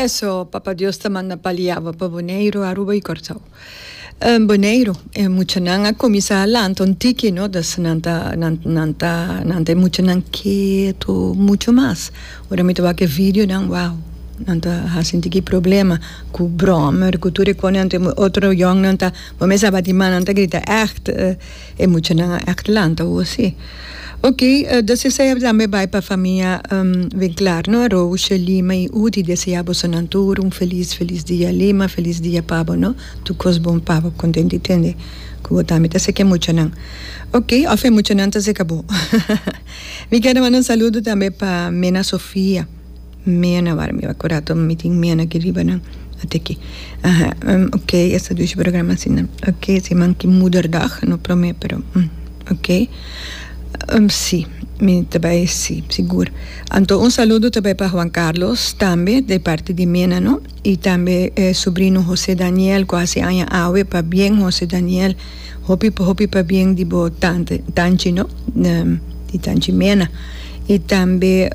Eso, Papa Dios ta manda paliawa pa Boneiru, Aruba y Corcao. En Boneiru e muchanan a cuminsa a lanta un tiki no ta nan ta nan ta nan ta e muchanan ketu mucho mas. Ora mi ta wak e videonan wow nan ta haci un tiki problema cu brommer cu tur e cosnan otro yongnan ta bo mes abatima nan ta grita echt. E muchanan a Atlanta u osi. Ok, desea e tambe bai pa famia Bin Klar no, Roosje, Lima i Udi desea bosonan tur un felis felis dia Lima felis dia pabo no, tur kos bon pabo kontenti tende ku bo tambe ta seka e muchanan ok of e muchanan ta seka bo. Mi keda manda un saludo tambe pa Mena Sofia. Mena wara mi a kura to mi tin mena aki riba nan ate aki aha ok esta dushi programa asina ok si man ki moederdag no prome pero ok si mi ta bai si sigur anto un saludo ta bai pa Juan Carlos tambe di parti di mena no y tambe e sobrino Jose Daniel ku hasi aña awe pabien Jose Daniel. hopi hopi pabien di bo tante tanchi no di tanchi mena y tambe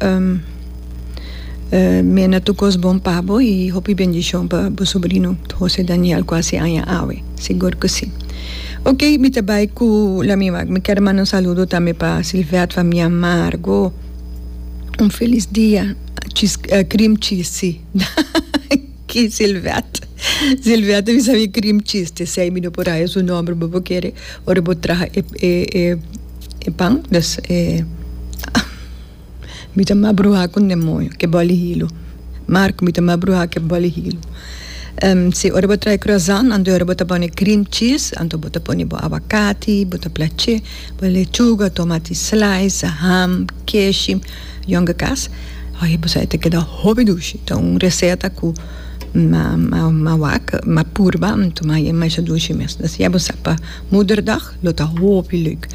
mena tur cos bon pa bo y hopi bendicion pa bo sobrino Jose Daniel cu a haci aña awe sigur cu si ok mi ta bay cu la mi wak mi ker manda un saludo tambe pa Silvette famia Amargo un feliz dia cream cheese si. Ki Silvette. Silvette a bisa mi cream cheese te sei mi no por haya su nomber bo bo kere ora bo traha e e e e pan dus e mi ta mas bruha con demonio ke boli hilo Marco mi ta mas bruha ke boli hilo si ora bo traha e croissant anto ora bo ta pone cream cheese anto bo ta pone bo aguacati bo ta plache. Pon lechuga, tomati slice, ham, keshi, yonke kas. Oye bo sa e ta keda hopi dushi. Ta un reseta ku ma wak, ma purba am tuma i e masha dushi mes. Des ya bo sa pa Moederdag lo ta hopi leuk.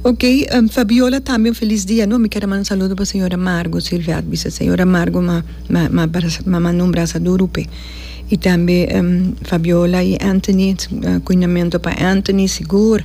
Ok, Fabiola tambe un felis dia no. Mi kier a manda un saludo pa señora Margo Silvia a bisa señora Margo ma ma numbra sa duru p'e. I tambe Fabiola i Anthony, kuinamentu pa Anthony sigur.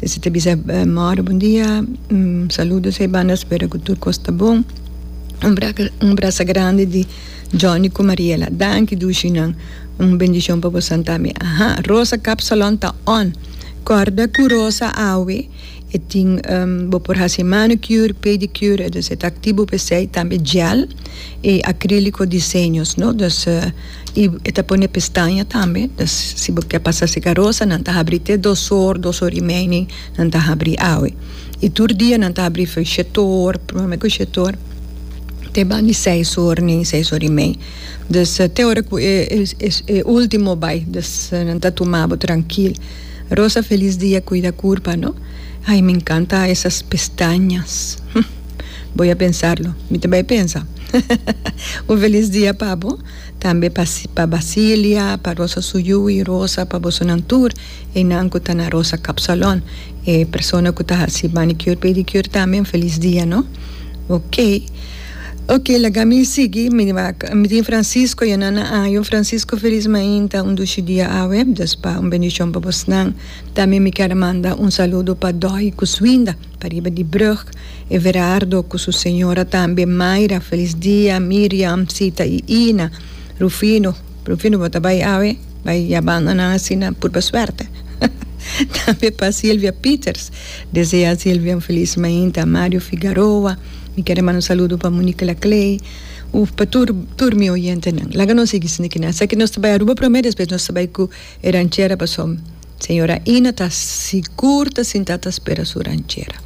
Esta ta bisa, More bon dia, un saludo esei banda spera ku tur kos ta bon. Un braka un brasa grandi di Johnny ku Mariela. Danki Dushinan. Un bendishon pa bosan tambe. Aha Rosa kap salon ta on. Kòrda ku Rosa awe e tin bo por hasi manicure, pedicure entonces e ta aktibu pa esei tambe gel i akriliko diseños no. Y e ta pone pestaña tambe, dus si bo ke pasa si karosa nan ta habri te dos or, dos or y meining nan ta habri awe. Y tur dia nan ta habri for shetor, prome ku shetor te ban di seis or nin seis or y mei. Dus te ora ku e e ultimo bai dus nan ta tuma bo trankil. Rosa felis dia kuida kurpa no. Ay mi enkanta esas pestañas. Bo ya pensarlo. Mi ta bai pensa. Un felis dia pa bo, tambe pa pa Basilia, pa Rosa su yu i Rosa, pa bosonan tur, einan ku ta na Rosa Kapsalon, e persona ku ta hasi manicure, pedicure tambe un felis dia no. Ok. Ok laga mi sigui, mi mi tin Francisco ya nan na año, Francisco felis mainta, un dushi dia awe, Dios pa un bendishon pa bosnan. Tambe mi kier manda un saludo pa Doy ku su winda. Pariba di brug, Everardo cu su señora tambe, Mayra, Felisdia, Miriam, Sita y Ina, Rufino, Rufino bo ta bay awe? bay yabando nan asina purba suerte, tambe pa Silvia Pieters, desea Silvia un feliz mainta, Mario Figaroa, mi kier a manda un saludo pa Monique Laclay, uf pa tur, tur mi oyentenan. Laga nos sigui sintikinan, esaki nos ta bay Aruba prome, despues nos ta bay cu e ranchera pasobra. Señora Ina ta sigur ta sintá ta spera su ranchera.